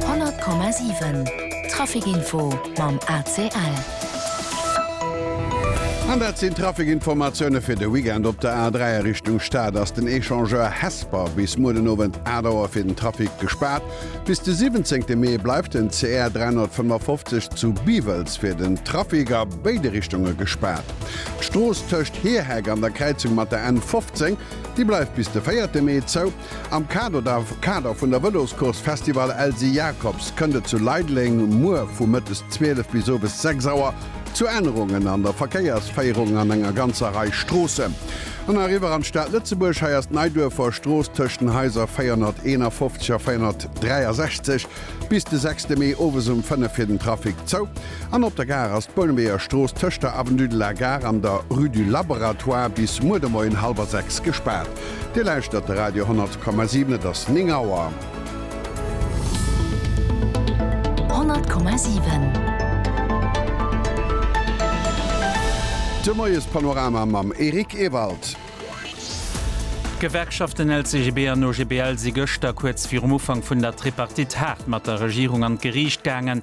100,7 Trafikinfo mam ACL. An dat sinn d'Trafikinformatioune fir de Weekend. Op der A3 a Richtung Stad ass den Echangeur Hesper bis muer den Owend 8 Auer fir den Trafic gespaart. Bis de 17 Mee bleift den CR 355 zu Biwels fir den Trafic a béide Richtunge gespaart. D'Strooss tëscht Heerheck an der Kräizung mat der N 15, déi bleift bis de 4 Mee zou. Am Kader vun der Vëloscourse Festival Elsy Jacobs kënnt et zu Leideleng muer vu mëttes 12 bis owes 6 Auer zu Ännerungen an der Verkéiersféierung an enger ganzer Rei Stroossen. An eriwwer an d'Stad Lëtzebuerg. Hei ass d'Neiduerfer Strooss tëscht den Haiser 451 a 463 bis de 6 de Mee owes um 5 fir den Trafic zou. An op der Gare ass d'Bouneweger Strooss tëscht der Avenue de la Gare an der Rue du Laboratoire bis muer de Moien hallwer 6 gespaart. Dir lauschtert de Radio 10,7, et ass 9 Auer. 10,7 De Moiespanorama mam Eric Ewald. D'Gewerkschaften LCGB an OGBL si gëschter kuerz virum Ufank vun der Tripartite haart mat der Regierung an d'Geriicht gaangen.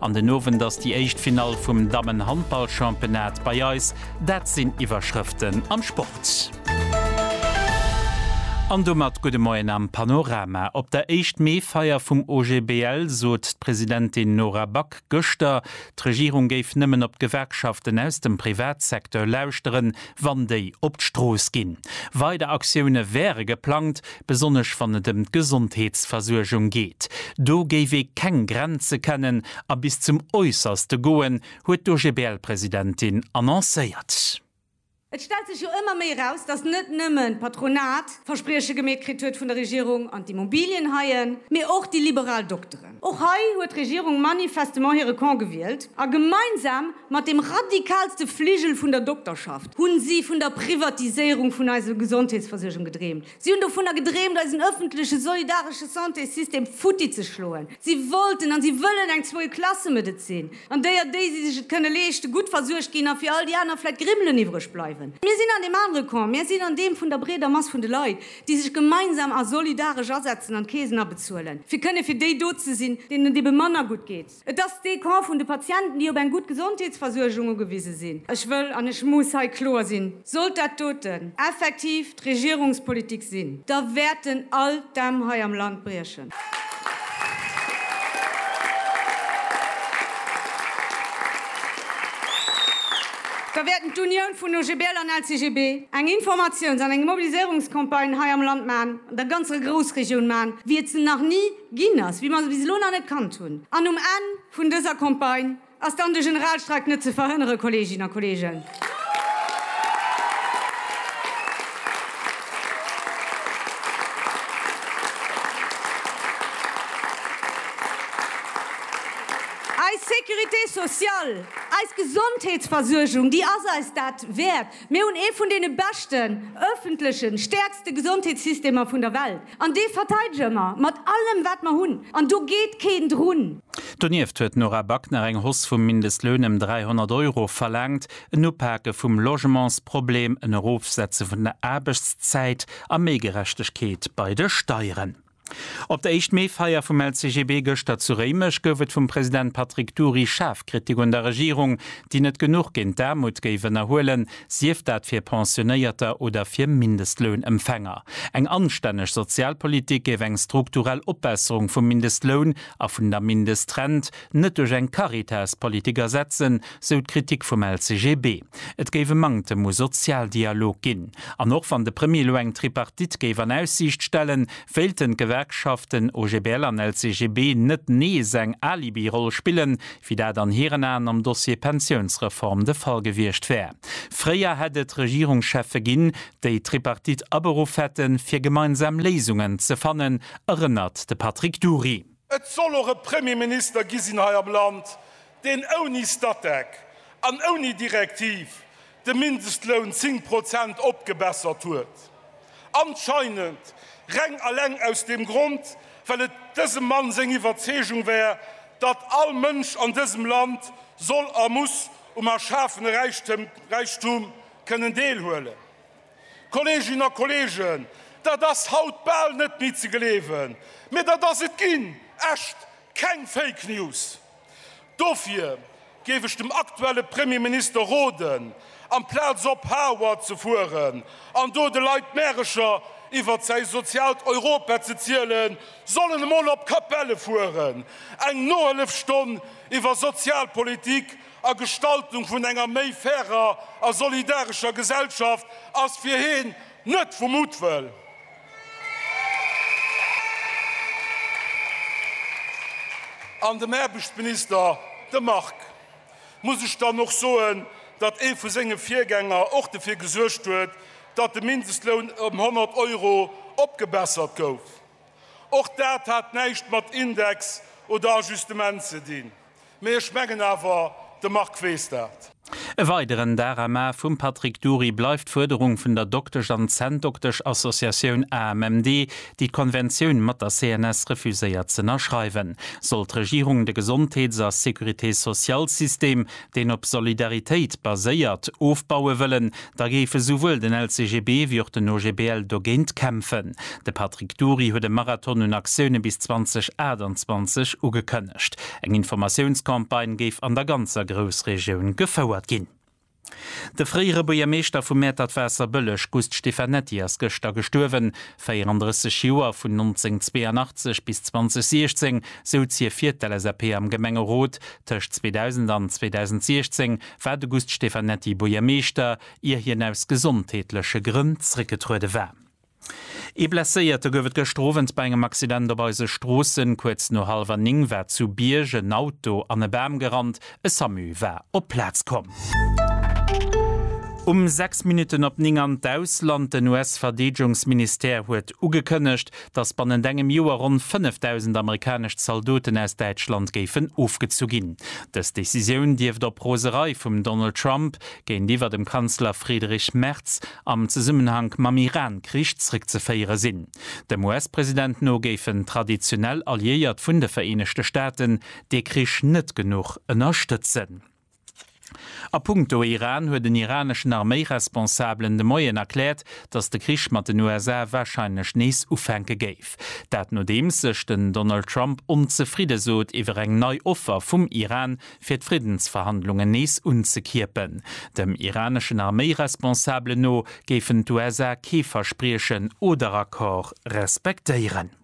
An den Owend ass déi éischt Finall vum Dammen-Handball-Championnat bei eis. Dat sinn Iwwerschrëften am Sport. An domat gudde Moien am Panorama. Op der éischt Mee-Feier vum OGBL sot d'Presidentin Nora Back gëschter, d'Regierung géif nëmmen op d'Gewerkschaften aus dem Privatsecteur lauschteren, wann déi op d'Strooss ginn. Weider Aktioune wäre geplangt, besonnesch wann et ëm d'Gesondheetsversuergung geet. Do géif ee keng Grenze kennen a bis zum Äusserste goen, huet d'OGBL-Presidentin annoncéiert. Et stellt sech jo ëmmer méi eraus, datt net nëmmen d'Patronat Versprieche gemeet kritt huet vun der Regierung an d'Immobilienhaien, mee och déi liberal Dokteren. Och hei huet d'Regierung manifestement hire Camp gewielt a gemeinsam Mat dem radikalste Fligel vun der Dokterschaft hu si vun der Privatiséierung vun eiser Gesondheetsversuergung gedreemt. Si hunn dovunner gedreemt, eisen ëffentleche solidaresche Santésystem futti ze schloen. Si wollten an si wëllen eng Zweiklasse-Medezin, an déier déi, si sech et kënne leeschten, gutt versuergt ginn a fir all déi aner vläit Grimmelen iwwreg bleiwen. Mir sinn an deem anere Camp. Mir sinn an deem vun der breeder Mass vun de Leit, déi sech gemeinsam a solidaresch asetzen an d'Keesen abezuelen, fir kënne fir déi do ze sinn, deenen et ebe manner gutt geet. Et ass dee Camp vun de Patienten, déi op eng gutt Gesondheetsversuergung ugewise sinn. Ech wëll an ech muss hei kloer sinn, Sollt dat doten effektiv d'Regierungspolitik sinn, da wäerten all d'Dämm hei am Land briechen. Da wäerten d'Unioun vun OGBL an LCGB eng Informatiouns an eng Mobiliséierungscampagne hei am Land maachen, an der ganzer Groussregioun maachen, wéi et se nach ni Ginn ass, wéi mer se bis elo nach net kannt hunn. An um Enn vun dëser Campagne ass dann de Generalstreik net ze verhënnere, Kolleeginnen a Kolleegen. Eis Sécurité sociale, eis Gesondheetsversuergung, déi ass eis dat wäert. Mir hunn ee vun deene beschten, öffentlechen, stäerkste Gesondheetssystemer vun der Welt. An dee verteidege mer mat allem, wat mer hunn. An do geet keen drun. Donieft huet d'Nora Back nach eng Hoss vum Mindestloun ëm 300 Euro verlaangt, en Upake vum Logementsproblem, en Erofsetze vun der Aarbechtszäit a méi Gerechtegkeet bei de Steieren. Op der Éischt-Mee-Feier vum LCGB gëschter zu Réimech gouf et vum President Patrick Dury schaarf Kritik un der Regierung, déi net genuch géint d'Aarmut géif ënnerhuelen. sief dat fir Pensionéierter oder fir Mindestlounempfänger. Eng anstänneg Sozialpolitik géif eng strukturell Opbesserung vum Mindestloun a vun der Mindestrent net duerch eng Caritas-Politik ersetzen, sou d'Kritik vum LCGB. Et géif e Manktem u Sozialdialog ginn. An och wann de Premier elo eng Tripartite géif an Aussiicht stellen, wéilten d'Gewerkschaften OGBL an LCGB net nees eng Alibi-Roll spillen, wéi dat an hiren Aen am Dossier Pensiounsreform de Fall gewiescht wär. Fréier hätt et Regierungscheffe ginn, déi d'Tripartite aberuff hätten, fir gemeinsam Léisungen ze fannen, erënnert de Patrick Dury. Et soll och e Premierminister gi sinn hei am Land, deen ouni Statec an ouni Direktiv de Mindestloun 10 Prozent opgebessert huet, anscheinend reng alleng aus dem Grond, well et dësem Mann seng Iwwerzeegung war, datt all Mënsch an dësem Land soll a muss um erschafene Räichtum kënnen deelhuelen. Kolleeginnen a Kolleegen, dat ass haut bal net méi ze gleewen, mee dat ass et ginn, echt keng Fake News! Dofir géif ech dem aktuelle Premierminister roden, amplaz op Harvard ze fueren an do de Leit Märecher iwwert säi soziaalt Europa ze zielen, soll en emol op Capelle fueren, eng Nohëllefstonn iwwer Sozialpolitik a Gestaltung vun enger méi fairer a solidarescher Gesellschaft ass fir hien Net vu Muttwëll. An dem Aarbechtsminister, dem Marc, muss ech dann och soen, datt ee vu senge Virgänger och dofir gesuergt huet, datt de Mindestloun ëm 100 Euro opgebessert gouf. Och dat hat näischt mat Index oder Ajustement ze dinn. Mee ech mengen awer, de Marc weess dat. E weideren Darama vum Patrick Dury bleift d'Fuerderung vun der Doktesch an Zänndoktesch Associatioun AMMD, déi d'Konventioun mat der CNS refuséiert z'ënnerschreiwen. Soll d'Regierung de Gesondheets a Sécurité-sociale-System, deen op Solidaritéit baséiert, ofbaue wëllen, da géif esouwuel den LCGB wéi och den OGBL dogéint kämpfen. De Patrick Dury huet e Marathon un Aktioune bis 2028 ugekënnegt. Eng Informatiounscampagne géif an der ganzer Groussregioun gefouert ginn. De fréiere Buergermeeschter vu Mäertert-Waasserbëlleg Gust Stefanetti ass gëschter gestuerwen. 34 Joer, vun 1982 bis 2016 souz hie fir d'LSAP am Gemengerot. Tëscht 2000 an 2016 war de Gust Stefanetti Buergermeeschter, ier hien aus gesondheetleche Grënn zréckgetruede war. Ee Blesséierte gouf et gëschter Owend bei engem Accident op eise Stroossen. Kuerz no hallwer 9 war zu Bierg en Auto an e Bam gerannt. E Samu war op d'Plaz komm. Um 6 Minutten op 9 an d'Ausland, Den US-Verdeedegungsministère huet ugekënnegt, datt bannent engem Joer ronn 5.000 amerikanesch Zaldoten aus Däitschland géifen ofgezu ginn. Dës Decisioun dierft op Roserei vum Donald Trump géintiwwer dem Kanzler Friedrich Merz am Zesummenhank mam Iran-Krich zréckzeféiere sinn. Dem US-President no géifen traditionell Alliéiert vun de Vereenegte Staaten dee Krich net genuch ënnerstëtzen. A punkto Iran huet en iraneschen Arméiresponsabelen de Moien erkläert, datt de Krich mat den USA warscheinlech nees ufänke géif. Dat nodeems sech den Donald Trump onzefridde sot iwwer eng nei Offer vum Iran, fir d'Friddensverhandlungen nees unzekierpen. Dem iraneschen Arméiresponsabelen no géifen d'USA kee Verspriechen oder Accord respektéieren.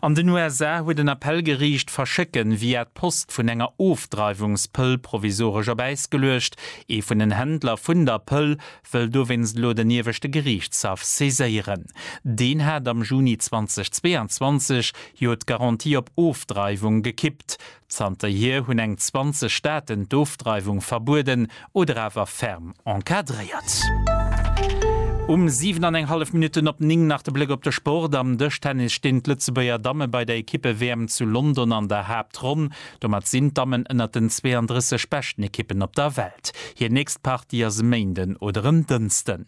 An den USA huet en Appellgeriicht d'Verschécken via d'Post vun enger Ofdreiwungspëll provisoresch op Äis geluecht. Ee vun den Händler vun der Pëll wëll dowéinst elo den ieweschte Geriichtshaff saiséieren. Deen hat am Juni 2022 jo d'Garantie op Ofdreiwung gekippt. Zanterhier hunn eng 20 Staaten d'Ofdreiwung verbueden oder awer ferm encadréiert. Um 7 an eng hallef Minutten op 9 nach de Bléck op de Sport, Am Dëschtennis stinn d'Lëtzebuerger Damme bei der Ekippe-WM zu London an der Haaptronn. Domat sinn d'Dammen ënnert den 32 beschten Ekippen op der Welt. Hir nächst Partie ass e Méinden oder en Dënsten.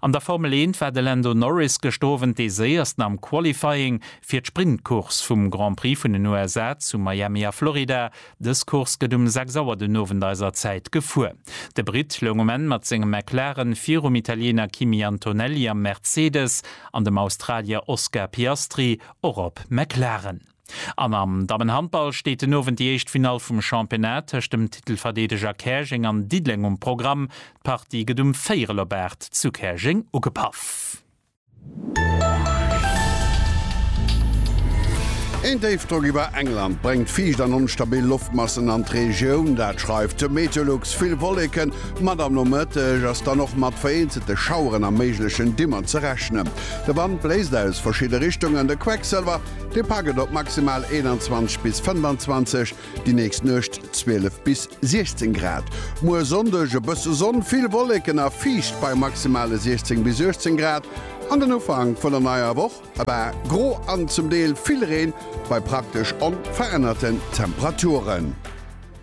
An der Formel Eent war de Lando Norris gëschter Owend dee Séiersten am Qualifying fir d'Sprintcourse vum Grand Prix vun den USA zu Miami a Florida. Dës Course gëtt um 6 Auer den Owend eiser Zäit gefuer. De Britt loung um Enn mat sengem McLaren virum Italiener Kimi Antonelli am Mercedes an dem Australier Oscar Piastri och op McLaren. An am Dammenhandball steet den Owend déi éischt Finall vum Championnat tëscht dem Titelverdeedeger Käerjeng an Diddeleng um Programm. D'Partie gëtt um véierel op aacht zu Käerjeng ugepaff. Een Déifdrock iwwer England bréngt fiicht an onstabil Loftmassen an d'Regioun, dat schreift de Meteolux. Vill Wolleken mat am Nomëtteg ass dann och mat vereenzelte Schaueren a méiglechen Dimmer ze rechnen. De Wand bléist aus verschidde Richtungen, de Quecksilwer Dee Pak et op maximal 21 bis 25, déi nächst Nuecht 12 bis 16 Grad. Muer Sonndeg e bësse Sonn, vill Wolleken a fiicht bei maximale 16 bis 18 Grad. An den Ufank vun der neier Woch e paar gro an zum Deel vill Reen bei praktesch onverännerte Temperaturen.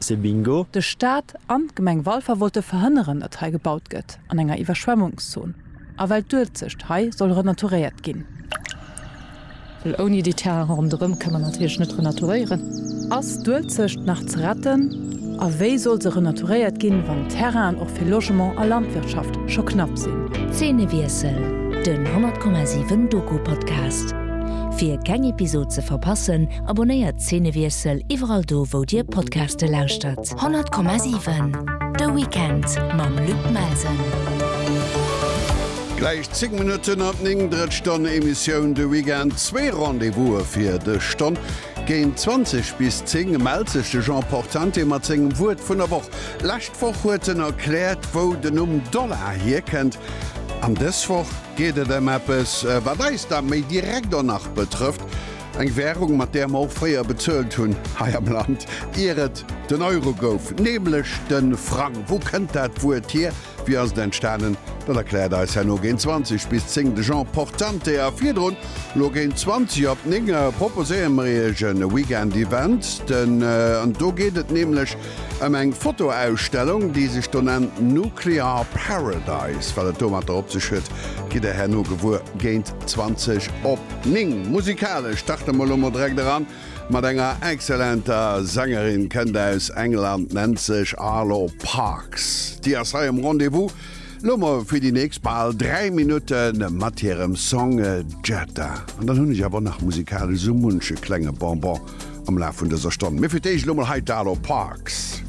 C'est bingo! De Staat an d'Gemeng Walfer wollte verhënneren, datt hei gebaut gëtt an enger Iwwerschwemmungszon a well d'Uelzecht hei soll renaturéiert ginn. Well ouni déi Terrainen ronderëm ka mer natierlech net renaturéieren. Ass d'Uelzecht nach ze retten a wéi soll se renaturéiert ginn, wann d'Terrainen och fir Logement a Landwirtschaft scho knapp sinn? Zeenewiessel, den 100,7 Doku-Podcast. Fir keng Episod ze verpassen, Abonnéiert Zenewiessel iwwerall do wou dir Podcaste lauschtert. 100,7 De Weekend mam Luc Melsen. Gläich 10 Minutten ab 9 drëtt Stonn Emissioun de Weekend zwee Rendez-Vouse fir dech Stonn. Géint 20 bis 10 mellt sech de Jean Portante mat sengem Wuert vun der Woch. Lescht Woch huet en erkläert wou den Numm Dollar hierkënnt. An dës Woch geet et ëm eppes wat eis da méi direkt och nach betrëfft. Eng Währung, mat där mer och fréier bezuelt hunn hei am Land, ier et den Euro gouf, nämlech de Frang. Wou kënnt dat Wuert hier? Wéi ass et entstanen? Dat erkläert eis herno géint 20 bis 10 de Jean Portante. A virdrun, elo géint 20 op 9, proposéiere mer iech e Weekend-Event, an do geet et nämlech Ëm eng Fotoausstellung, déi sech do nennt Nuclear Paradise. Wat et domatter op sech huet, gitt der herno gewuer géint 20 op 9. Musikalesch starte mer elo mol direkt eran mat enger excellenter Sängerin. Kënnt aus England, nennt sech Arlo Parks. Déi ass hei um Rendez-vous. Lo mol fir déi nächst bal 3 Minutte mat hirem Song Jetta. An dann hunn ech awer nach musikalesch esou munche klenge Bonbon am Laf vun dëser Stonn. Mee fir d'éischt lo mol hei d'Arlo Parks.